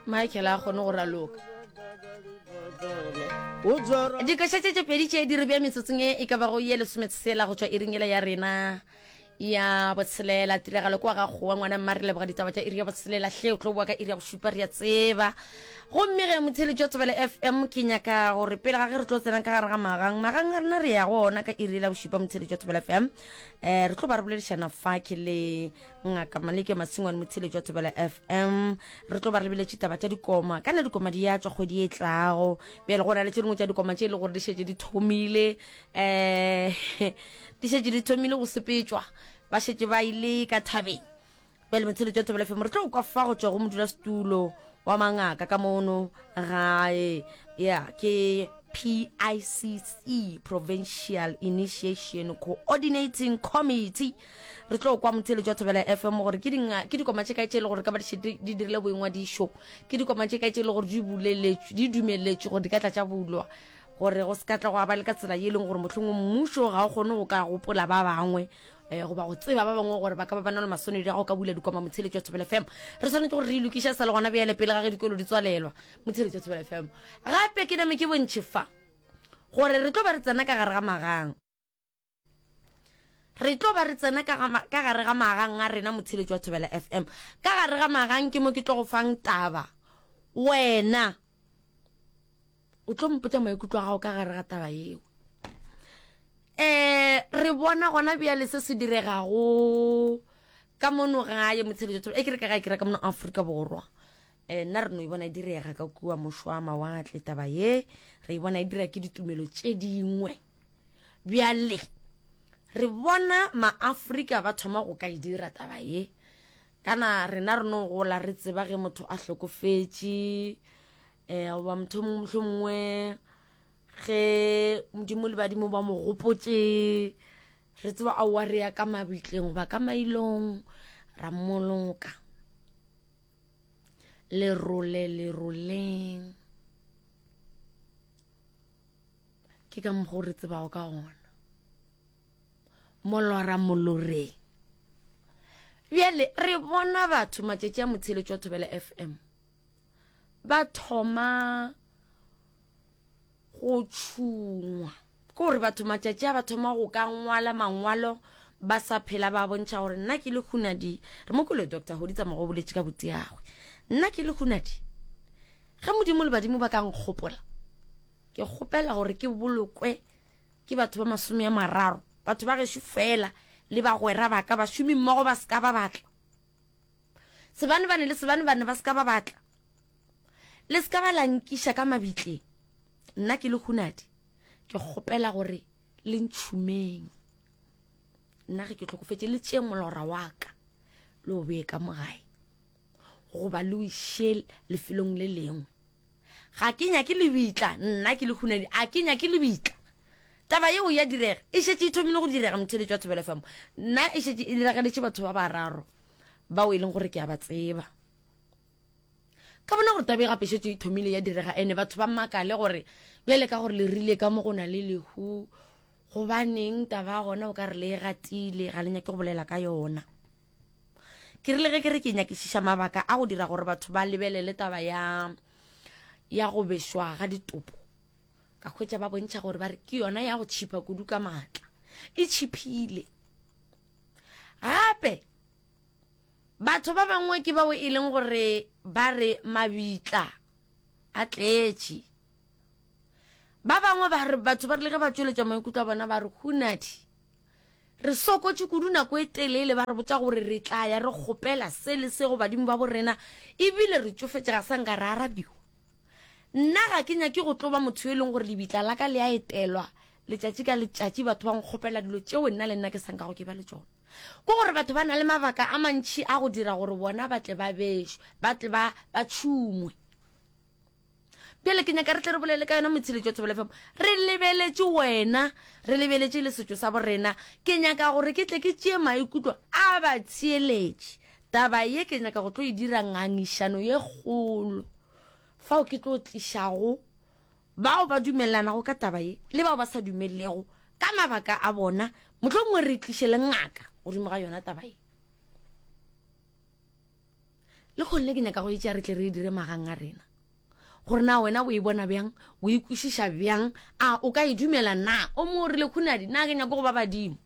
michael a kgone go raloka dikošatše tše pedi tše di re bja metsotsong e e ka bago ye lesometshela go tšwa iringela ya rena ya botshelela tiragalo kwa ga kgowa ngwana mma re leboga ditaba tša iri ya botshelela hle o tlo boa ka iri ya go šupa re ya tseba gomme ge motheletši wa tsebele f m ke nyaka gore pele ga ge re tlo tsenang ka gare ga magang magang a rena re ya go ona ka iri la bošupa motheletši wa tsebele f m um re tlo ba re boledišana fake le ngaka maleke masingwane motshele jwa thobela fm re tlo ba re biletše taba tša dikoma kana dikoma di ya tswa kgwedi e tlago bjale go na le tše dingwe tša dikoma tše e le gore di šetše di thomile um di šetše di thomile go sepetšwa ba šetše ba ile ka thabeng bjale motshele jwa thobela fm re tlo kwa fa go tswa go modula setulo wa mangaka ka mono gae ya ke PICC Provincial Initiation Coordinating Committee re tlo kwa motheletši wa thobela fm gore ke dinga ke dikoma tše kae tše e le gore ka ba di dirile boingwadišo ke dikoma tše kae tše e le gore di buleletšwe di dumeletšwe gore di ka tla tša bulwa gore go se ka tla go aba le ka tsela ye e leng gore mohlong mmušo ga o kgone go ka gopola ba bangwe um goba go tseba ba bangwe gore ba ka ba ba na le maswanedi a go ka bula dikoma motheletšo thobela fm re tshwanetse gore re lokiša sa le gona bjale pele ga ge dikolo di tswalelwa motheletšo thobela fm gape ke name ke bontšhe fa gore re tlo ba re tsena ka gare ga magang re tlo ba re tsena ka gare ga magang a rena motsheletši wa thobela fm ka gare ga magang ke mo ke tlo go fang taba wena o tlo mpotsa maikutlo a gago ka gare ga taba yeo um re bona gona bjale se se diregago ka mono gae motsheletši wa thobela e ke re ka ga e kira ka mono aforika borwa um nna re no e bona e direga ka kua mošwa mawatle taba ye re e bona e dira ke ditumelo tše dingwe Bjale re bona Maafrika ba thoma go ka e dira taba ye. Kana rena re no gola re tseba ge motho a hlokofetše eh goba motho mongwe mohlho mongwe ge modimo le badimo ba mo gopotše re tseba a wa re ya ka mabitleng goba ka mailong ra mmoloka lerole leroleng ke ka mokgwa o re tsebago ka gona molora moloreng bjale re bona batho matšatši a motsheletšo wa thobela fm ba thoma go tšhungwa ke gore batho matšatši a ba thoma go ka ngwala mangwalo ba sa phela ba bontšha gore nna ke le hunadi re mo kole doctor go ditsa mogo boletše ka boteagwe nna ke le hunadi ge modimo le badimo ba ka nkgopola Ke kgopela gore ke bolokwe ke batho ba masome a mararo, batho ba gešo fela le bagwera ba ka, bašomimmogo ba se ka ba batla. Sebanebane le sebanebane ba se ka ba batla. Le se ka ba la nkiša ka mabitleng. Nna ke le hunadi, ke kgopela gore le ntšhumeng. Nna ge ke tlhokofetše, le tšeeng molora wa ka le o bee ka mo gae. goba le o iše lefelong le lengwe ga ke nyake lebitla nna ke lehunadi a ke nyake lebitla taba yeo ya direga e šetše e thomile go direga motheletši wa thobelo fm nna e šetše e dirageletše batho ba bararo bao e leng gore ke a ba tseba ka bona gore tabe gape šetše e thomile ya direga ene batho ba makale gore bjale ka gore le rile ka mo go na le lehu gobaneng taba gona o ka re le e gatile ga le nyake go bolela ka yona Ke rile ge ke re ke nyakišiša mabaka a go dira gore batho ba lebelele taba ya ya go bešwa ga ditopo ka hwetša ba bontšha gore ba re ke yona ya go tšhipa kudu ka maatla e tšhiphile gape batho ba bangwe ke bao e leng gore ba re mabitla a tletše ba bangwe ba re batho ba rile ge ba tšweletša maikutlo a bona ba re hunadi Re sokotše kudu nako e telele ba re botša gore re tla ya re kgopela se le se go badimo ba bo rena e bile re tšofetše ga sa nka re arabiwa. Nna ga ke nyake go tlo ba motho yo e leng gore lebitla la ka le a etelwa letšatši ka letšatši batho ba nkgopela dilo tšeo nna le nna ke sa nkago ke ba le tšona. Ke gore batho ba na le mabaka a mantši a go dira gore bona ba tle ba bešwe, ba tle ba ba tšhumwe. Bjale ke nyaka re tle re bolele ka yona Motshile Jwa Thobela FM. Re lebeletše wena, re lebeletše le setšo sa borena. Ke nyaka gore ke tle ke tšee maikutlo a batheeletši. Taba ye ke nyaka go tlo e dira ngangišano ye kgolo fao ke tlo tlišago bao ba dumelelanago ka taba ye le bao ba sa dumelelego ka mabaka a bona. Mohlomongwe re tliše le ngaka godimo ga yona taba ye. Le kgone le ke nyaka go e tšea re tle re e dire magang a rena. Gore na wena o e bona bjang, o e kwešiša bjang, a o ka e dumela na? O mongwe o rile, Khunadi, na ke nyake go ba badimo?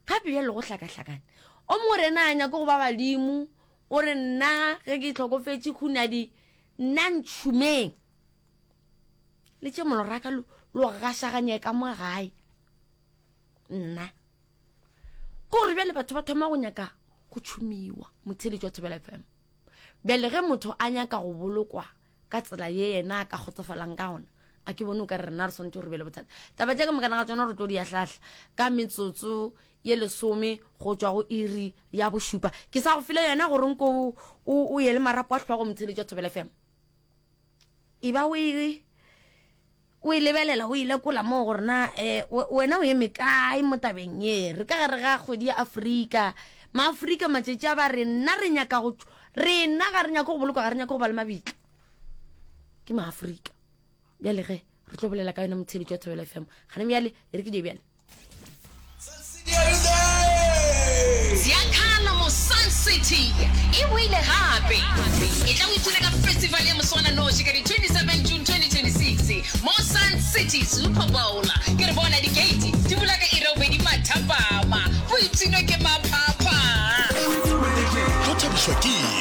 Gape bjalo go hlakahlakane. O mongwe o re, Na nyake go ba badimo? O re, Nna ge ke tlhokofetše khunadi, nna ntšhumeng. Le tše moloraka lo gašaganye ka mo gae. Nna. ko gore bjale batho ba thoma go nyaka go tšhomiwa motheletši wa thobela fm bjale ge motho a nyaka go bolokwa ka tsela ye yena a ka kgotsofalang ka gona a ke bone o ka re rena re swanetse gore be le bothata taba tša ka mokana ga tsona re tlo di ya hlahla ka metsotso ye lesome go tšwa go iri ya bošupa ke sa go file yona gore nko o ye le marapo a tlhogo motheletši wa thobela fm e ba o e O e lebelela, o e lekola mo gore na wena o eme kae mo tabeng ye. Re ka gare ga kgwedi ya Afrika. Maafrika matšatši a ba re, nna re nyaka go, rena ga re nyake go bolokwa, ga re nyake go ba le mabitla. Ke Maafrika. Bjale ge re tlo bolela ka yona motshebetši wa Thobela FM, gane bjale, e re ke je bjale. Ziakala mo Sun City e boile gape. Etla o ipshine ka festival ya moswananoši ka di 27 June 2026 mo Sun City Super Bowl. Ke re bona dikeiti di bula ka iri ya bobedi mathapama, go ipshinwe ke maphapha. Go thabišwa ke eng?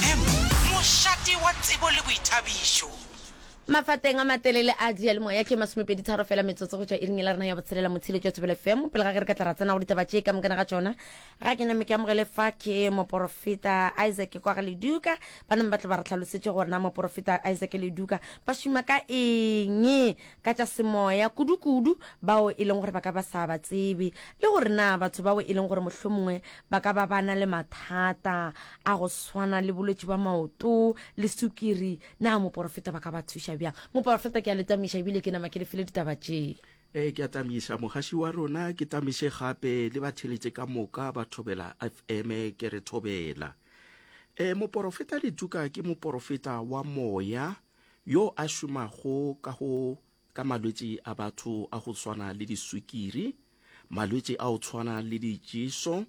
M, Mošate wa tsebo le boithabišo. Mafateng a matelele a diyalemoya ke masomepedi tharo fela metsotso go tšwa iring e la rena ya botshelela motshile tšwa thobele fm pele ga ge re ka tla ra tsenago ditaba tše ka mokana ga tšona ga ke name ke amogele fa ke moporofeta isaac kwa ga leduka ba name ba tlo ba re tlhalosetše gore na moporofeta isaac leduka ba šoma ka eng ka tša semoya kudukudu bao e leng gore ba ka ba sa ba tsebe le gore na batho bao e leng gore mohlomongwe ba ka ba ba na le mathata a go swana le bolwetši ba maoto le sukiri na moporofeta ba ka ba thuša bjang moporofeta ke a le tamiša ebile ke nama ke le file ditaba tše e ke a tamiša mogaši wa rona ke tamiše gape le batheletše ka moka ba thobela fm ke re thobela e moporofeta letuka ke moporofeta wa moya yo a šomago ka go ka malwetši a batho a go swana le diswikiri, malwetši a go tshwana le ditšeso,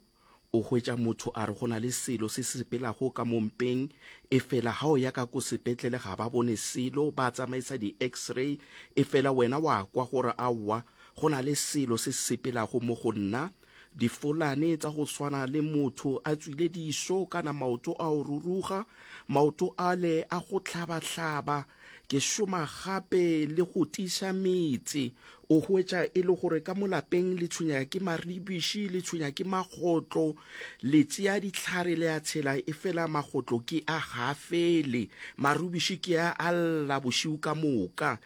o hwetša motho a re go na le selo se se sepelago ka mo mpeng, efela ga o ya ka ko sepetlele ga ba bone selo, ba tsamaisa di-X-ray, efela wena wa kwa gore aowa, go na le selo se se sepelago mo go nna, Difolane tsa go swana le motho a tswile diso kana maoto a o ruruga, maoto ale a go hlaba-hlaba. Ke šoma gape le go tiša metse. O hwetša e le gore ka mo lapeng le tshwenyega ke maribiši, le tshwenya ke magotlo, le tšea dihlare le a tshela e fela magotlo ke a ga fele, marubiši ke a a lla bošiu ka moka.